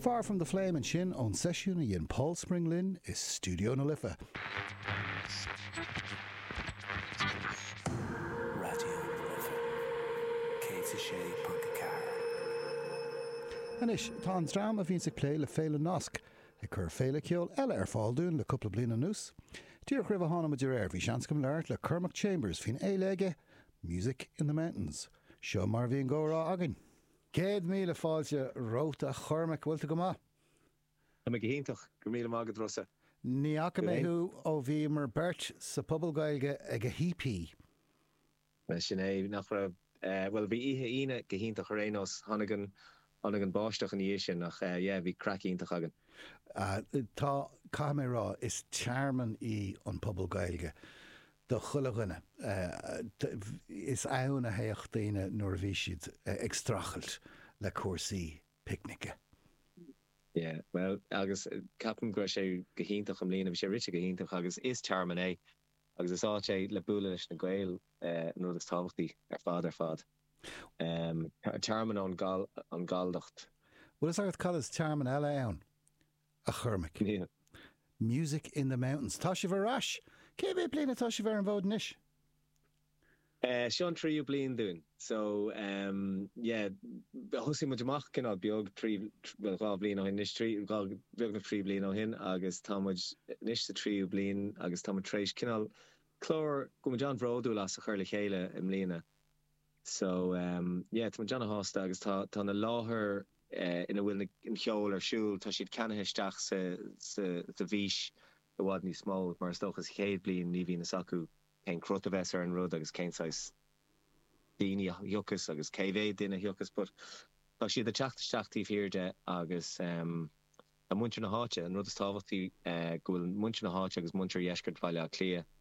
Far from the Flame ansin ón seisiún a dhein Paul Spring linn i stiúideo na Life. Anois, tá an dream a bhíonns ag plé le Féile Nasc ag cur féile ceoil eile ar fáil dúinn le cúpla bliain anuas. Díreach roimh a tháinig muid aréir, bhí seans agam labhairt le Cormac Chambers faoin fhéile aige, Music in the Mountains. Seo mar a bhí an comhrá againn. Céad míle fáilte romhat a Chormaic, bhfuil tú go maith? Tá mé go hiontach, go raibh míle maith agat Rossa. Ní fhaca mé thú ó bhíomar beirt sa Phuball Gaeilge ag EP. Bhuel, sin é, nach raibh? Bhuel, bhí oíche Aoine go hiontach ar aon nós. Tháinig an, tháinig an báisteach ina dhiaidh sin ach yeah, bhí craic iontach againn. Tá, caithfidh mé rá, is tearmann í an Phuball Gaeilge do chuile dhuine. Is ann a thagadh daoine nuair a bhí siad ag streachailt le cúrsaí picnice. Yeah, bhuel agus ceapaim go raibh sé go hiontach i mbliana, bhí sé rite go hiontach agus is tearmann é agus is áit é le bualadh leis na Gaeil, an rud is tábhachtaí ar fad ar fad. Tearmann ón ghalldacht. Bhfuil a fhios agat cad is tearmann eile ann a Chormaic. Music in the Mountains. Tá sibh ar ais! Cé mhéad bliain atá sibh ar an bhfód anois? Seo an tríú bliain dúinn. So, yeah, thosaigh muid amach cineál beag trí, bhuel, dhá bhliain ó shin anois, trí, dhá, beagnach trí bliana ó shin agus tá muid anois sa tríú bliain agus tá muid tar éis cineál clár go bhfuil muid an-bhródúil as a chur le chéile i mbliana. So ehm yeah tá muid an-sásta agus tá tá na láthair eh ina bhfuil na an ceol ar siúl tá siad ceannaithe isteach sa sa sa bhfís i bhfad níos mó mar is dócha sa chéad bliain ní bhíonn fhios acu cén cruth a bheas ar an rud agus cén saghas daoine a thiocfas agus cé mhéad duine a thiocfas but tá siad ag teacht isteach taobh thiar de agus ehm tá muintir na háite an rud is tábhachtaí eh go bhfuil muintir na háite agus muintir dheisceart Bhaile Átha Cliath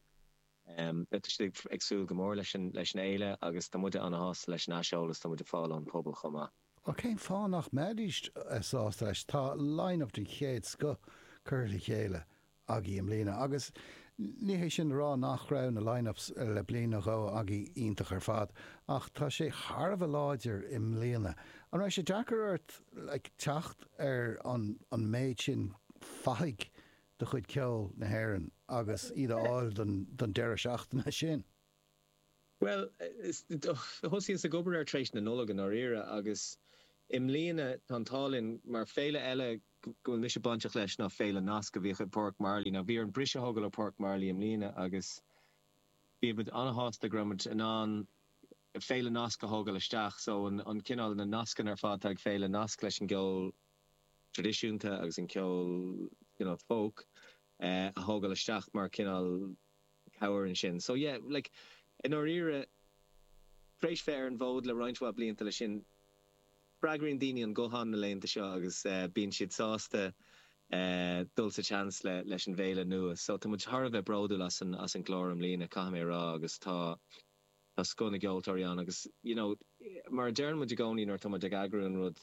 Tá siad ag súil go mór leis an fhéile agus tá muide ana shásta leis an aiseolas atá muid ag fáil ón bpobal chomh maith. Bhuel cén fáth nach mbeidís sásta leis? Tá line-up den chéad scoth curtha le chéile agaí i mbliana agus ní hé sin le rá nach raibh na line-ups le bliain nó dhó agaí iontach ar fad ach tá sé thar a bheith láidir i mbliana. An raibh sé deacair ort ag teacht ar an méid sin fathaigh? de chuid ceol na hÉireann agus iad a fháil don deireadh seachtaine sin? Bhuel, thosaíos ag obair air tar éis na Nollag i ndáiríre agus i mbliana tá an t-ádh linn mar féile eile go bhfuil mise bainteach leis ná Féile Nasc a bhíodh i bPáirc Marley. Now bhí orainn bris a thógáil ó Pháirc Marlay i mbliana agus bhí muid ana-shásta go raibh muid in ann Féile Nasc a thógáil isteach, so an cineál, na nascanna ar fad atá ag Féile Nasc leis an gceol. traidisiúnta agus an ceol, cineál folk, a thógáil isteach mar cineál cabhair ansin. So yeah, like, i ndáiríre, tar éis bheith ar an bhfód le roinnt mhaith blianta leis sin, freagraíonn daoine an guthán na laethanta seo agus bíonn siad sásta dul sa tseans leis an bhféile nua. So tá muid thar a bheith bródúil as an clár i mbliana, caithfidh mé a rá, agus tá. tá scoth na gceoltóirí ann agus you know mar a deireann muid i gcónaí nuair atá muid ag eagrú an rud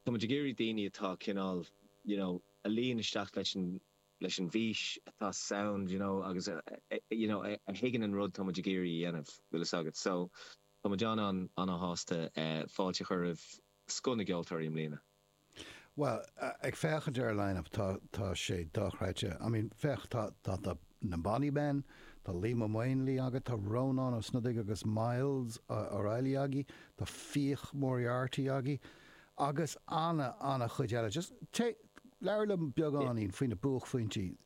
tá muid ag iarraidh daoine atá cineál you know a luíonn isteach leis an leis an bhfís atá sound you know agus a you know a thuigeann an rud tá muid ag iarraidh a dhéanamh bhfuil fhios agat so tá muid an-an-shásta fáilte a chur roimh scoth na gceoltóirí i mbliana. Bhuel, ag féachaint ar an line-up tá tá sé dochreidte. I mean, féach, tá tá tá na Bonny Men, tá Liam Ó Maonlaí agat, tá Rónán Ó Snodaigh agus Myles O'Reilly agaí, tá Fiach Moriarty agaí, agus ana ana chuid eile. Just téigh, labhair liom beagáinín faoi na buaicphointí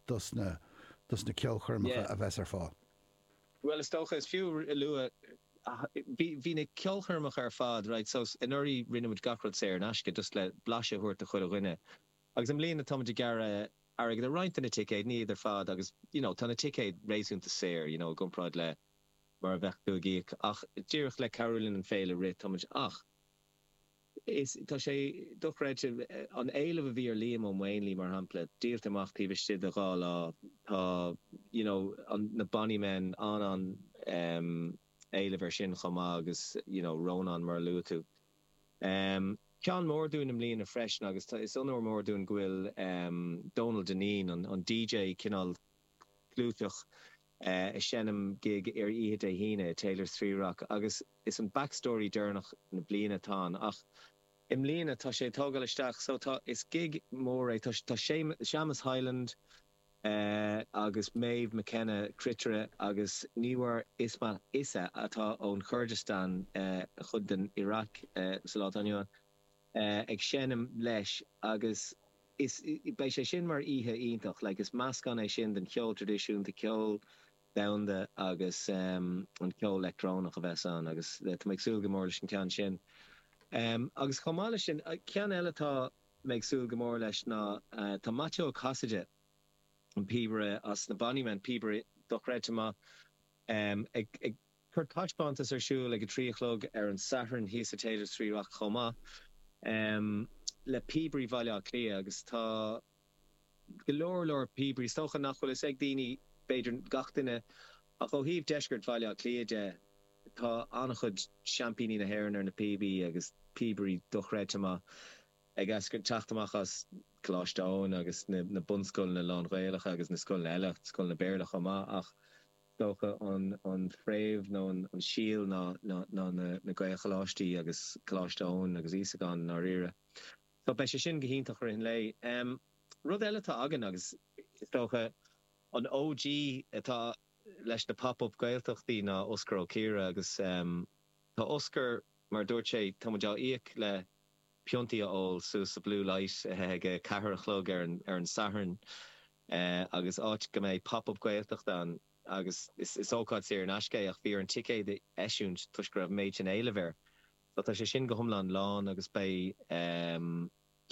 dos na dos na ceolchoirmeacha a bheas ar fáil. Bhuel, is dócha, is fiú a lua, ní bheidh na ceolchoirmeacha ar fad, right, so anuraidh rinne muid gach rud saor in aisce, just le blaiseadh a thabhairt do chuile dhuine. Agus i mbliana tá muid ag gearradh airgead ar roinnt de na ticéid, ní iad ar fad agus, you know, tá na ticéid réasúnta saor, you know, i gcomparáid le mar a bheadh tú ag íoc ach díreach le cabhrú linn an féile a rith, tá muid ach. Is tá sé dochreidte, an éileamh a bhí ar Liam Ó Maonlaí, mar shampla, díolta amach taobh istigh de dhá lá. Tá, you know, an, na Bonny Men, an-éileamh ar sin chomh maith agus, you know, Rónán, mar a luaigh tú. Ceann mór dúinn i mbliana freisin agus tá, is onóir mór dúinn go bhfuil Donal Dineen, an, an DJ cineál, clúiteach ag seinm gig ar oíche Dé hAoine i Taylors Three Rock agus is an Backstory deireanach na bliana atá ann ach i mbliana tá sé ag tógáil isteach so tá, is gig mór é, tá Séamus Hyland agus Méabh McKenna, cruitire agus Niwar Ismat Issa atá ón Churdistan, chuid den Iraq sa lá atá inniu ann, ag seinm leis agus. Is beidh sé sin mar oíche iontach. Like is meascán é sin den cheol tradisiúnta, ceol domhanda agus em an ceol leictreonach a bheas ann agus tá mé ag súil go mór leis an ceann sin. Em agus chomh maith leis sin ceann eile atá mé ag súil go mór leis ná tá Maitiú Ó Casaide, an píobaire as na Bonnymen, píobaire dochreidte maith, em ag, ag, Cur taispeántas ar siúl ag a trí a chlog ar an Satharn thíos sa Theatre Trí Rock chomh maith le Píobairí Bhaile Átha Cliath agus tá go leor leor píobairí is dócha nach bhfuil fhios ag daoine b'fhéidir gach duine ach ó thaobh deisceart Bhaile Átha Cliath de tá an-chuid seaimpíní na hÉireann ar na píobaí agus píobairí dochreidte maith ag eascairt teacht amach as Coláiste Eoin agus na bunscoileanna lán-Ghaelacha agus na scoileanna eile, scoileanna Béarla chomh maith ach. is dócha an fréamh nó an síol ná na Gaelcholáistí agus Coláiste Eoin agus Íosagáin i ndáiríre. So beidh sé sin go hiontach rith an lae. Rud eile atá againn agus is dócha an OG atá leis na Pop Up Gaeltachtaí ná Osgur Ó Ciardha agus tá Osgur mar a dúirt sé tá muid á íoc le piontaí a ól suas sa Blue Light ag a ceathair a chlog ar an Satharn. agus áit go mbeidh Pop Up Gaeltacht ann agus is ócáid saor in aisce é ach bhí orainn ticéad a eisiúint toisc go raibh méid sin éilimh air so tá sé sin go hiomlán lán agus beidh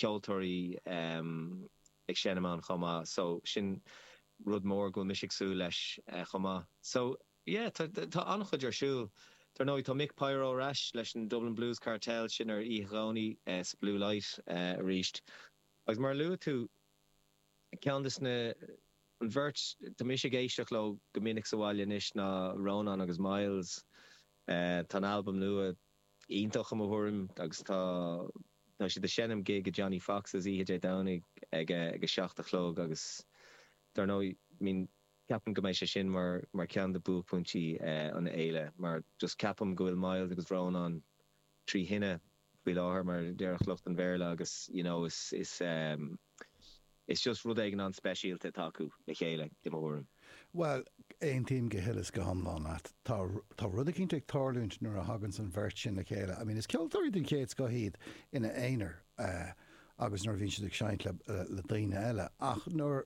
ceoltóirí ag seinm ann chomh maith so sin rud mór go bhfuil mise ag súil leis chomh maith so yeah tá tá an-chuid ar siúl. Dar ndóigh tá Mick Pyro ar ais leis an Dublin Blues Cartel sin ar oíche Dhomhnaigh sa Blue Light arís agus mar a luaigh tú, Ceann de na, an bheirt, tá mise ag éisteacht leo go minic sa bhaile anois ná Rónán agus Myles. Tá an albam nua iontach i mo thuairim agus tá tá siad ag seinm gig i Johnnie Fox's oíche Dé Domhnaigh ag a ag a seacht a chlog agus dár ndóigh I mean ceapaim go mbeidh sé sin mar mar ceann de buaicphointí an fhéile mar just ceapaim go bhfuil Myles agus Rónán trí thine faoi láthair mar a déarfadh lucht an Bhéarla agus you know is is ehm is just rud éigin an-speisialta atá acu le chéile i mo thuairim. Bhuel, aontaím go huile is go hiomlán leat. Tá tá rud eicínt ag tarlúint nuair a thagann san an bheirt sin le chéile. I mean is ceoltóirí den chéad scoth iad ina aonar eh agus nuair a bhíonn siad ag seinnt le le daoine eile ach nuair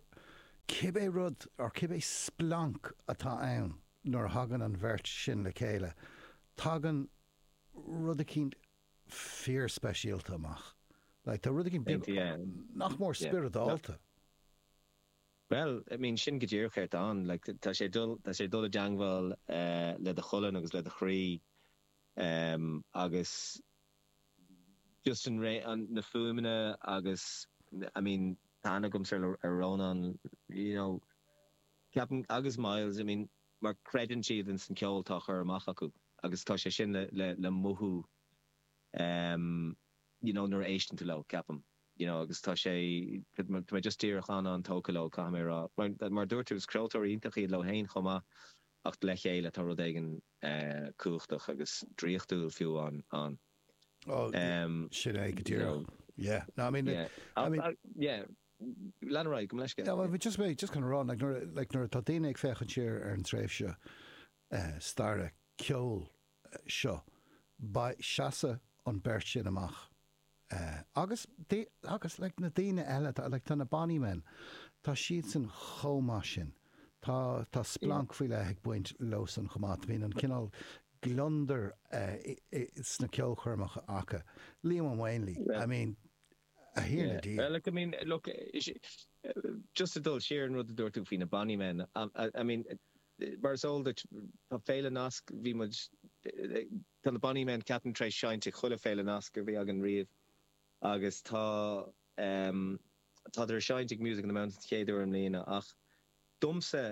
cibé rud or cibé splanc atá ann nuair a thagann an bheirt sin le chéile tagann rud eicínt fíor speisialta amach. Like, tá rud eicínt beag nach mór spioradálta. Bhuel, I mean, sin go díreach é atá ann. Like, tá sé dul, tá sé dul i dteangmháil le do cholainn agus le do chroí agus just an ré, an, na fuaimeanna agus I mean, tá aithne agamsa ar, ar Rónán, you know, ceapaim, agus Myles, I mean, mar creideann siad in san ceol atá á chur amach acu. agus tá sé sin le mothú you know nuair a éisteann tú leo, ceapaim, you know agus tá sé, tá mé just díreach an-an-tógtha leo, caithfidh mé a rá. Mar a dúirt tú, is craoltóirí iontacha iad leo féin chomh maith ach le chéile tá rud éigin cumhachtach agus draíochtúil fiú ann, you know. Yeah, no, I mean, I mean. Yeah, lean ar aghaidh, gabh mo leithscéal. Yeah, well, bhí mé just chun a rá, like nuair atá daoine ag féachaint siar ar an tréimhse staire, ceol, seo, beidh, seasfaidh an bheirt sin amach agus agus like na daoine eile atá like tá na bonny men tá siadsan chomh maith sin tá tá splanc faoi leith ag baint leosan chomh maith, bíonn an cineál gliondar sna ceolchoirmeacha acu, Liam Ó Maonlaí I mean a Thiarna Dia. Yeah, like I mean look just ag dul siar an rud a dúirt tú faoi na bonny men I mean Mar is eol duit, tá Féile Nasc, bhí muid, tá na Bonny Men ceapaim tar éis seinnt ag chuile Féile Nasc a bhí againn riamh agus tá ehm tádar ag seinnt ag Music in the Mountains den chéad uair i mbliana ach domsa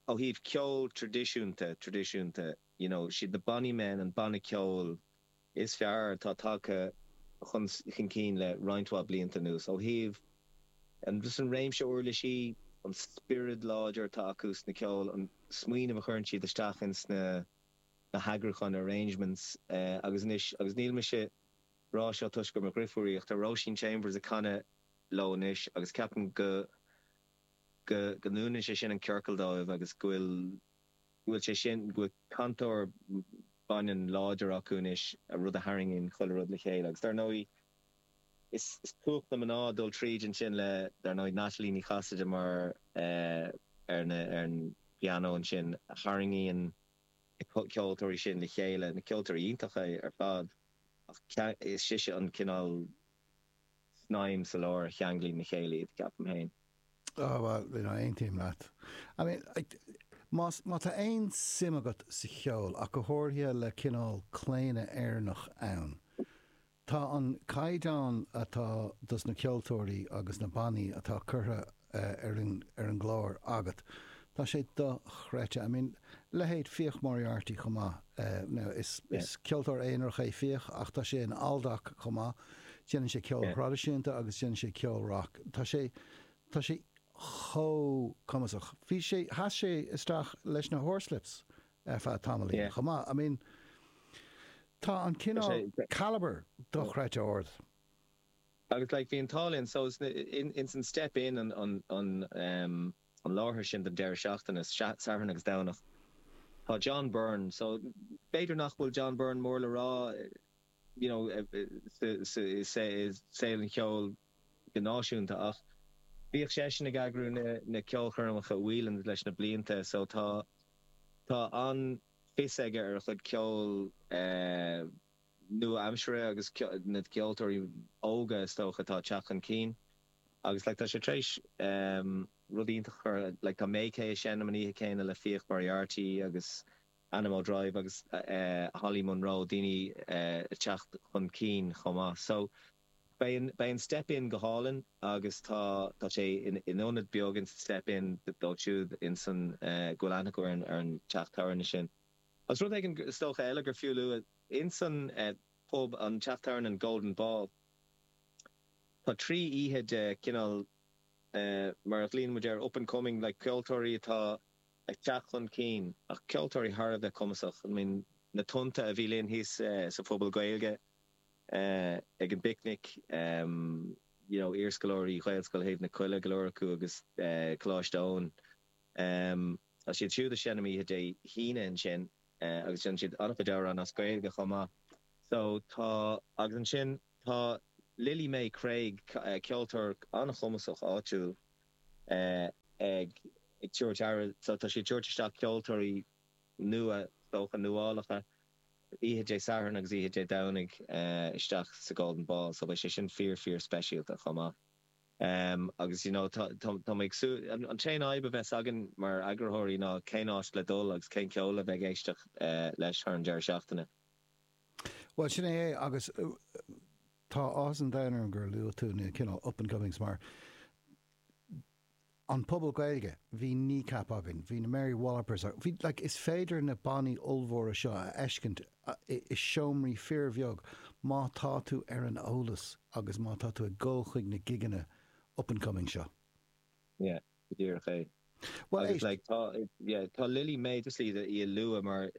ó thaobh ceol tradisiúnta, tradisiúnta, you know, siad na Bonny Men an banna ceoil is fearr atá tagtha chun cinn le roinnt mhaith blianta anuas ó thaobh an réimse uirlisí, an spiorad láidir atá acu sa gceol, an smaoineamh a chuireann siad isteach ins na heagrúcháin, arrangements, agus anois, agus níl mise rá seo toisc gur mo dheirfiúr í ach tá Róisín Chambers ag canadh leo anois agus ceapaim go go ndúnann sé sin an ciorcal dóibh agus go bhfuil. bhfuil sé sin, go bhfuil cantóir baineann láidir acu anois, rud a tharraingíonn chuile rud le chéile. Agus dar ndóigh, is cumhacht na mná dul tríd ansin le, dar ndóigh, Natalie Ní Chasaide mar, ar an bpianó ansin, a tharraingíonn na ceoltóirí sin le chéile, na ceoltóirí iontacha ar fad. Ach is sise an cineál. snaidhm sa lár a cheanglaíonn le chéile iad, ceapaim féin. Ah, bhuel, you know, aontaím leat. I mean, más, má tá aon suim agat sa cheol, ach go háirithe le cineál claonadh Éireannach ann, tá an caighdeán atá dos na ceoltóirí agus na bannaí atá curtha ar an gclár agat. Tá sé dochreidte. I mean, leithéid Fiach Moriarty chomh maith. Now, is ceoltóir aonarach é Fiach ach tá sé in Aldoc chomh maith. Déanann sé ceol traidisiúnta agus déanann sé ceol rac. Tá sé, tá sé chomh cumasach. Bhí sé, sheas sé isteach leis na Horslips ar feadh tamaillín chomh maith. I mean, tá an cineál calibre dochreidte ard. Agus like bhí an t-ádh linn so ins an step in an an em an láthair sin don deireadh seachtaine Satharn agus Domhnach tá John Byrne so b'fhéidir nach bhfuil John Byrne mór le rá you know sa sa sa saol an cheoil go náisiúnta ach bhíodh seisean ag eagrú na na ceolchoirmeacha i Whelan's leis na blianta so tá tá an-fhios aige ar a chuid ceoil eh nua-aimseartha agus na ceoltóirí óga is dócha atá ag teacht chun cinn agus like tá sé tar éis rud iontach a chur like tá MayKay ag seinm an oíche céanna le Fiach Moriarty agus Anamoe Drive agus Holly Munro daoine ag teacht chun cinn chomh maith so beidh beidh an Step Inn go hálainn agus tá tá sé in in ionad beag in san Step Inn dóibh siúd in san go bhfuil aithne acu ar an teach tabhairne sin. Agus rud éigin is dócha eile gur fiú a lua, ins an bpub, an teach tabhairne, an Golden Ball, tá trí oíche de cineál mar a ghlaíonn muid air, up and coming, like ceoltóirí atá ag teacht chun cinn ach ceoltóirí thar a bheith cumasach. I mean Na Tonnta a bhí linn thíos sa Phuball Gaeilge ag an bPicnic, you know iarscoláirí Ghaelscoil Thaobh na Coille go leor acu agus Coláiste Eoin. Tá siad siúd ag seinm oíche Dé hAoine ansin agus déanann siad an-chuid amhrán as Gaeilge chomh maith. So, tá, agus ansin tá Lily Mae Craig, ceoltóir an-chumasach áitiúil ag tabhairt aire, so tá sí ag tabhairt isteach ceoltóirí nua, is dócha, nuálacha oíche Dé Sathairn agus oíche Dé Domhnaigh isteach sa Golden Ball so beidh sé sin fíor, fíor speisialta chomh maith. Agus you know tá tá mé ag súil, an t-aon fhadhb a bheas againn mar eagarthóirí ná cén áit le dul agus cén ceol a bheith ag éisteacht leis thar an deireadh seachtaine. Bhuel sin é é agus tá áthas an domhain orm gur luaigh tú na cineál up and comings mar an Puball Gaeilge, bhí Kneecap againn, bhí na Mary Wallopers againn, bhí, like, is féidir na bannaí ollmhóra seo a fheiscint i seomraí fíorbheag má tá tú ar an eolas agus má tá tú ag dul chuig na gigeanna up and coming seo. Yeah, go díreach é. Bhuel, Agus, éist. like, tá, yeah, tá Lily Mae, just, like, í a lua mar,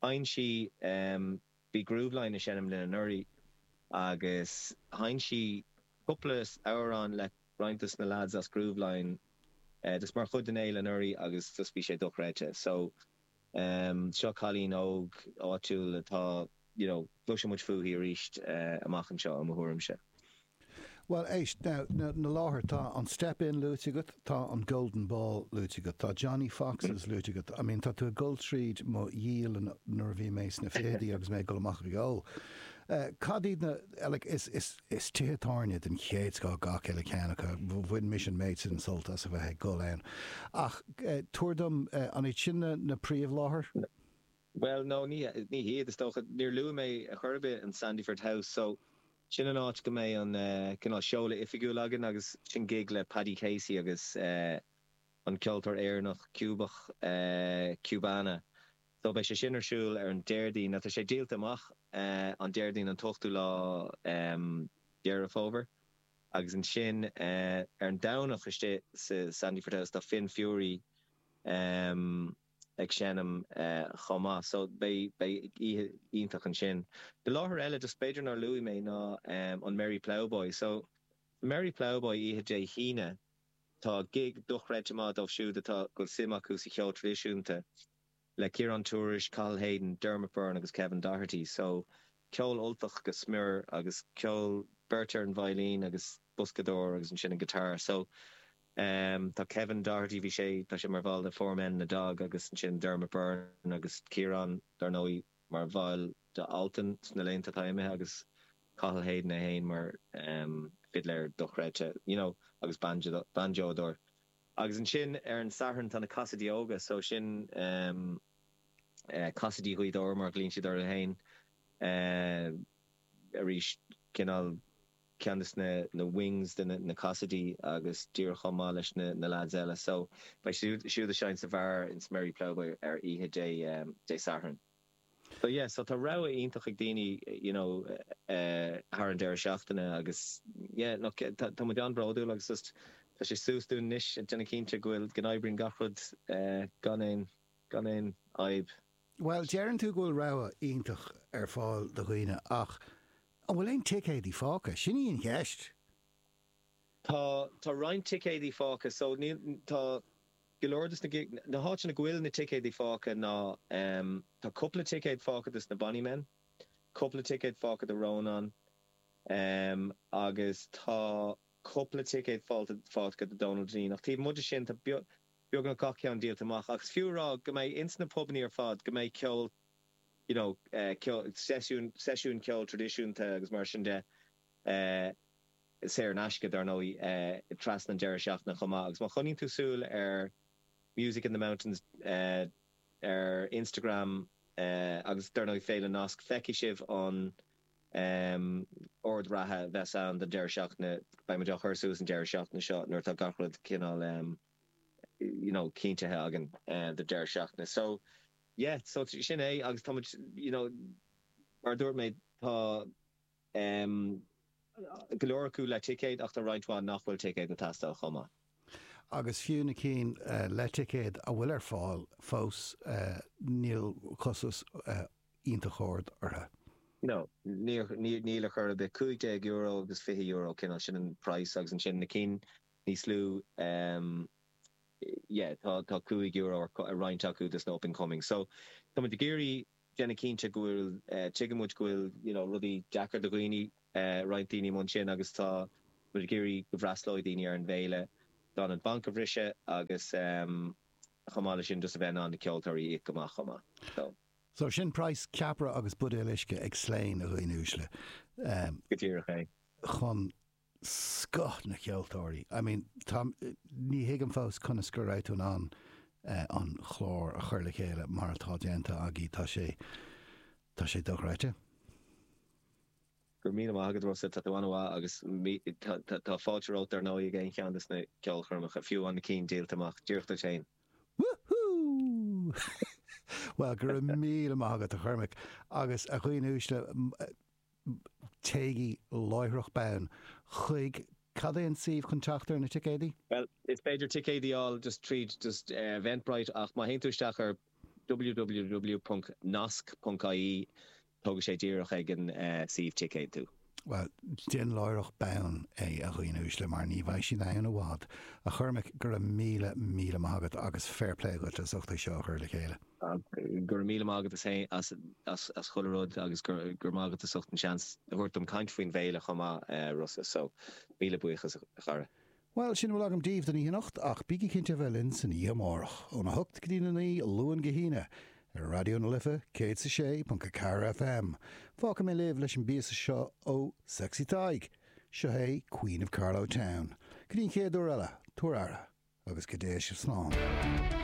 Sheinn sí, bhí Grooveline ag seinm linn anuraidh agus sheinn sí cúpla amhrán le roinnt dos na lads as Grooveline just mar chuid den fhéile anuraidh agus just bhí sé dochreidte. So, seo cailín óg áitiúil atá, you know, cloisfidh muid fúithi arís amach anseo i mo thuairimse. Bhuel, éist, now, na láthair, tá an Step Inn luaite agat, tá an Golden Ball luaite agat, tá Johnny Fox's luaite agat, I mean, tá tú ag dul tríd mo dhialann nuair a bhí mé sna fichidí agus mé ag dul amach ag ól. Cad iad na, like, is, is, is tithe tábhairne den chéad scoth gach uile cheann acu, bhain mise an méid sin sult as a bheith ag dul ann. Ach tabhair dom, an iad sin na, na príomh láthair? Bhuel, no, ní, ní hiad, is dócha. Níor luaigh mé ar chor ar bith an Sandyford House, so, sin an áit go mbeidh an eh, cineál seoladh oifigiúil againn agus sin gig le Paddy Casey agus eh, an ceoltóir Éireannach Cúbach, eh, Cubana. So, beidh sé sin ar siúl ar an Déardaoin, atá sé díolta amach eh, an Déardaoin an t-ochtú lá em, Dheireadh Fómhair agus ansin eh, ar an Domhnach istigh sa Sandyford House tá Finn Fury, em, ag seinm chomh maith so beidh oíche iontach ansin. An láthair eile just b'fhéidir nár luaigh mé ná an Merry Ploughboy so sa Merry Ploughboy oíche Dé hAoine tá gig dochreidte mhaith dóibh siúd atá bhfuil suim acu sa cheol traidisiúnta le Ciarán Tourish, Cathal Hayden, Dermot Byrne agus Kevin Doherty so ceol Ultach go smior agus ceol beirt ar an veidhlín agus boscadóir agus ansin an guitar so ehm tá Kevin Doherty bhí sé tá sé mar bhall de Four Men and a Dog agus ansin Dermot Byrne agus Ciarán dar ndóigh mar bhaill de Altan sna laethanta atá imithe agus Cathal Hayden é fhéin mar ehm fidléir dochreidte you know agus bainseodóir agus ansin ar an Satharn tá na Casaidigh Óga so sin ehm Casaidigh Ghaoth Dobhair mar a ghlaonn siad orthu féin arís, cineál ceann de na wings de na Casaidí agus díreach chomh maith leis na leaids eile. So, beidh siúd ag seinm sa bheár ins an Merry Ploughboy ar oíche Dé Sathairn. So, yeah, so tá rogha iontach ag daoine, you know, thar an deireadh seachtaine agus, yeah, no, tá muid an-bhródúil agus just tá sé suas dúinn anois a dhéanamh cinnte go bhfuil, go n-oibríonn gach rud gan aon, Gan aon fhadhb. Bhuel, deireann tú go bhfuil rogha iontach ar fáil do dhaoine ach an bhfuil aon ticéadaí fágtha? Sin í an cheist! Tá, tá roinnt ticéadaí fágtha. So, níl, tá go leor dos na, na háiteanna go bhfuil na ticéadaí fágtha ná ehm, tá cupla ticéad fágtha dos na Bonny Men, cupla ticéad fágtha do Rónán ehm agus tá cupla ticéad fágtha, fágtha do Dónal Dineen ach taobh amuigh de sin, tá beag, beagnach gach ceann díolta amach agus fiú a rá go mbeidh ins na pubannaí ar fad, go mbeidh ceol you know ceol, seisiúin ceoil tradisiúnta agus mar sin de saor in aisce dár ndóigh trasna an deireadh seachtaine chomh maith agus má choinníonn tú súil ar Music in the Mountains ar Instagram agus dár ndóigh Féile Nasc feicfidh sibh an Ord reatha a bheas ann don deireadh seachtaine. Beidh muid á chur suas an deireadh seachtaine seo nuair atá gach rud cineál you know cinntithe againn don deireadh seachtaine. So yeah so sin é agus tá muid you know mar a dúirt mé tá em go leor acu le ticéad ach tá roinnt mhaith nach bhfuil ticéad ag teastáil chomh maith. Agus fiú na cinn le ticéad a bhfuil ar fáil fós níl costas iontach ard orthu. No. Níl ar chor ar bith. Cúig déag euro agus fiche euro cineál, sin an price agus ansin na cinn níos lú yeah tá cúig euro ar roinnt acu dos na up and coming so tá muid ag iarraidh déanamh cinnte go bhfuil, tuigeann muid go bhfuil you know rudaí deacair do dhaoine, roinnt daoine amuigh ansin agus tá muid ag iarraidh go bhfreastlóidh daoine ar an bhféile gan an banc a bhriseadh agus chomh maith leis sin just a bheith in ann na ceoltóirí a íoc go maith chomh maith so. So sin price ceapaire agus buidéal uisce ag Slane, a dhaoine uaisle. Go díreach é. Chun. scoth na ceoltóirí. I mean, tá, ní thuigim fós conas go raibh tú in ann an chlár a chur le chéile mar atá déanta agaí, tá sé, tá sé dochreidte. Go raibh míle maith agat Rossa, tá tú an-mhaith agus tá fáilte romhat dar ndóigh ag aon cheann dos na ceolchoirmeacha, fiú na cinn díolta amach, díreach duit fhéin. Woohoo! Bhuel, go raibh míle maith agat a Chormaic, agus a dhaoine uaisle, téigí láithreach bonn chuig Cad é an suíomh chun teacht ar na ticéadaí? Bhuel, is féidir ticéid a fháil just tríd just Eventbrite ach má théann tú isteach ar www.nasc.ie tógfaidh sé díreach ag an suíomh ticéad tú. Bhuel, déan láithreach bonn é, a dhaoine uaisle, mar ní bheidh siad ann i bhfad. A Chormaic, go raibh míle, míle maith agat agus fair play daoibh as ucht é seo a chur le chéile. Go raibh míle maith agatsa féin as chuile rud agus go raibh maith agat as ucht an seans a thabhairt dom caint faoin bhféile chomh maith Rossa so míle buíochas a chara. Bhuel, sin a bhfuil agam daoibh don oíche anocht ach bígí cinnte a bheith linn san oíche amárach, óna hocht go dtí'n a naoi, Luan go hAoine, ar Raidió na Life 106.4 FM. Fágfaidh mé sibh leis an bpíosa seo ó Sexy Tadhg. Seo hé Queen of Carlow Town. Go dtí'n chéad uair eile, tabhair aire agus go dtéigh sibh slán.